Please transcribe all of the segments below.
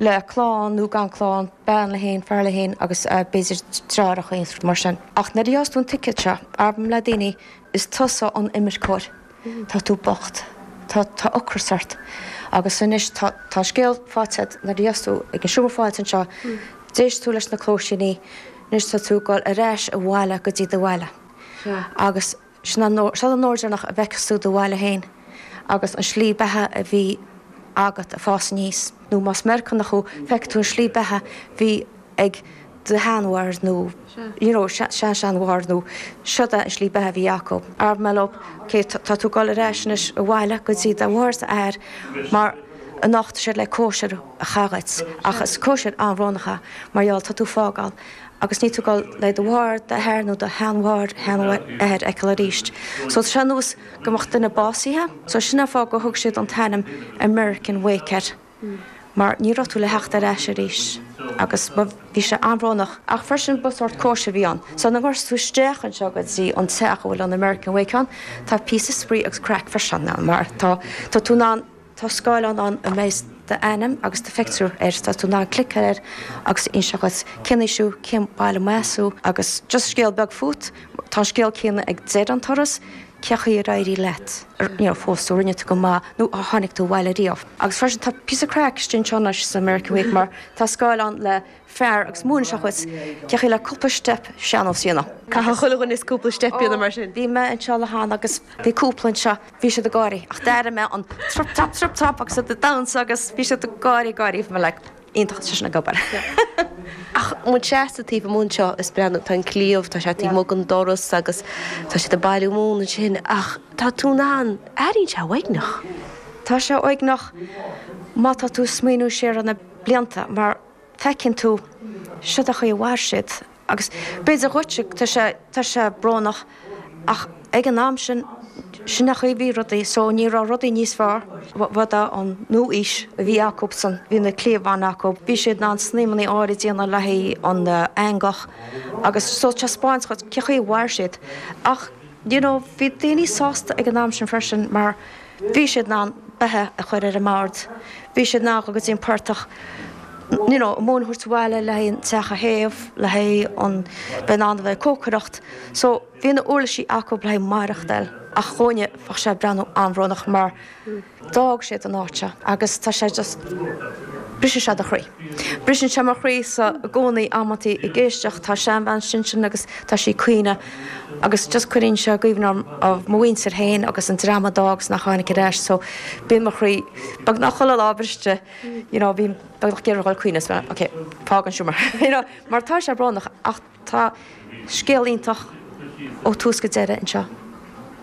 le clann nó gan clann, bean léi féin, fear leis féin agus b'fhéidir triúr a chlann, rud mar sin. Ach nuair a gheofas tú an ticéad seo, abraim le daoine, is tusa an imirceoir. Tá tú bocht. Tá ocras ort. Agus anois tá an scéal faighte agat, nuair a gheofas tú ag an seomra fáilte anseo, d'éist tú leis na cluaisíní, anois tá tú ag dul ar ais abhaile go dtí do bhaile. Agus Sin an siod é an uair deireanach a bhfeicfeas tú do bhaile féin agus an slí beatha a bhí agat ag fás aníos. Nó más Meiriceánach thú, feicfidh tú an slí beatha bhí ag do sheanmháthair nó you know seanseanmháthair nó siod é an slí beatha a bhí acu. Arb maith leo, ok, tá tú ag dul ar ais anois abhaile go dtí do mháthair is d'athair mar anocht tá siad le cóisir a chaitheamh dhuit ach is cóisir an-bhrónach é mar gheall tá tú ag fágáil agus níl tú ag dul do mháthair, d'athair nó do sheanmháthair, sheanathair a fheiceáil arís so tá sé ar nós go mbeadh duine básaithe. So sin an fáth gur thug siad an t-ainm American Wake air, mar ní raibh tú le theacht ar ais arís agus bhí sé an-bhrónach. Ach freisin ba sórt cóisir a bhí ann. So nuair a ghabhfas tú isteach anseo go dtí an teach a bhfuil an American Wake ann, tá píosa spraoi agus craic freisin ann mar tá tú in ann, Tá scáileán ann a mbeidh d'ainm agus do phictiúr air, is tá tú in ann cliceáil air agus inseoidh sé dhuit cén aois thú, cén baile a mb'as thú agus just scéal beag fút. Tá an scéal céanna ag deireadh an turas, cé chaoi ar éirigh leat, you know, phós tú, rinne tú go maith nó ar tháinig tú abhaile riamh. Agus freisin tá píosa craic istigh anseo anois san American Wake mar tá scáileán le fear agus múinfidh sé dhuit cé chaoi le cúpla steip sean-nós a dhéanamh. Caithfidh chuile dhuine cúpla steip a dhéanamh mar sin. Bhí mé anseo lá amháin agus bhí cúpla anseo, bhí siad ag gáirí ach d'airigh mé an trup trup trup trup agus iad ag damhnsa agus bhí siad ag gáirí ag gáirí agus mé like iontach tá sé sin ag obair. Ach muid seasta taobh amuigh anseo is breathnú, tá an cliabh, tá sé taobh amuigh den doras agus tá siad ag bailiú móna ansin ach tá tú in ann, airíonn sé uaigneach. Tá sé uaigneach má tá tú ag smaoineamh siar ar na blianta mar, Feiceann tú siod é an chaoi a mhair siad agus b'fhéidir dhuit tá sé, tá sé brónach ach ag an am sin, sin an chaoi a bhí rudaí so ní raibh rudaí níos fearr. B'iod é an nua-aois a bhí acusan, bhí na cliabháin acu, bhí siad in ann snaidhmeannaí áirithe a dhéanamh le haghaidh an eangach agus so taispeáint dhuit cé chaoi a mhair siad ach, you know, bhí daoine sásta ag an am sin freisin mar, Bhí siad in ann beatha a chur ar an mbord, bhí siad in ann dhul go dtí an portach, you know, móin a thabhairt abhaile le haghaidh an teach a théamh, le haghaidh an, bheith in ann a bheith ag cócaireacht. So, bhí na huirlisí acu le haghaidh maireachtáil. Ach dhúinne, bheadh sé ag breathnú an-bhrónach mar d'fhág siad an áit seo agus tá sé just, briseann sé do chroí. Briseann sé mo chroíse i gcónaí amantaí ag éisteacht, tá seanbhean ansin agus tá sí ag caoineadh, Agus just cuireann sé i gcuimhne dhom, mo mhuintir féin agus an dream a d'fhág agus nach tháinig ar ais, so bíonn mo chroí, beagnach chuile lá briste, you know, bím beagnach ag iarraidh a ghoil ag caoineadh is mé, ok, fág an seomra, you know, mar tá sé brónach ach tá scéal iontach ó tús go deireadh anseo,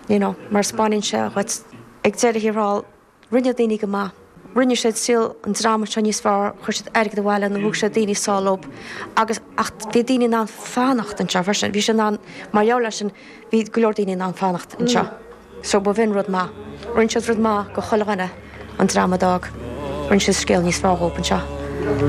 you know, mar spáineann sé dhuit ag deireadh thiar thall. Rinne daoine go maith. Rinne siad saol an dream anseo níos fearr, chuir siad airgead abhaile nó thug siad daoine sall leo agus, ach bhí daoine in ann fanacht anseo freisin. Bhí siad in ann, mar gheall air sin, bhí go leor daoine in ann fanacht anseo. So ba bh'in rud maith. Rinne siad rud maith go chuile dhuine, an dream a d'fhág. Rinne siad scéal níos fearr dhób anseo.